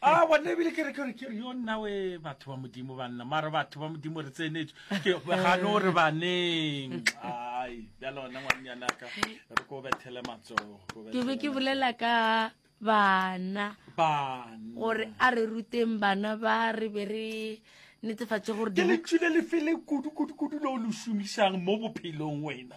a bona ebile ke re ke re ke re yo nna we batho ba modimo ba nna mara batho ba modimo re tsenetse ke ga no re baneng ai ya lona ngwanyana ka re ko bethele matsogo ke be ke bolela ka bana bana gore a re ruteng bana ba re be re netefatse gore ke letsile le fele kudu kudu kudu lo lo shumisang mo bophelong wena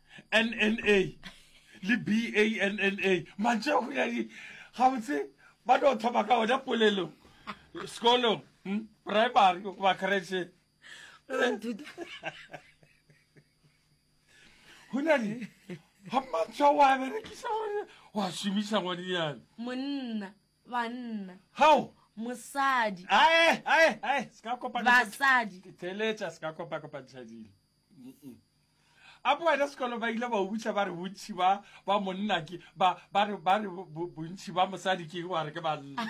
nna le banna mantše go ya di gabotse ba no thoma ka ona polelo sekolong hmm? primary goba kretše go na le ga mantšha wa berekisa gore wa šomiša ngwane yana monna banna gao mosadi ae ae ae se ka kopana basadi theletša se ka kopakopantšha dilo A bo wena sekolo ba ile ba o butša ba re bontši ba ba monna ke ba ba re ba re bontši ba mosadi ke wa re ke banna.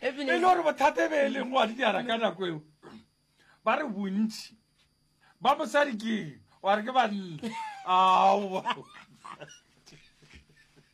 E le gore bothata e be e leng wa dijara ka nako eo ba re bontši ba mosadi ke wa re ke banna. Ao.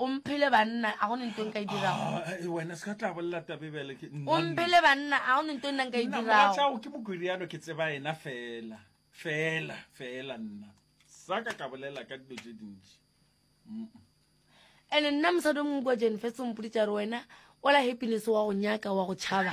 o mphele banna a gone nto nka e dirago ah, eh, wena se ka tla bolela tabebele ke o mphele banna a gone nto nna nka e dirago ke mokoriano ke tseba ena fela fela fela nna sa ka ka bolela ka dilo tse dintši ande nna mosadi o mongwe kwa jane fetse ompoditsa re wena ola happiness wa go nyaka wa go tšhaba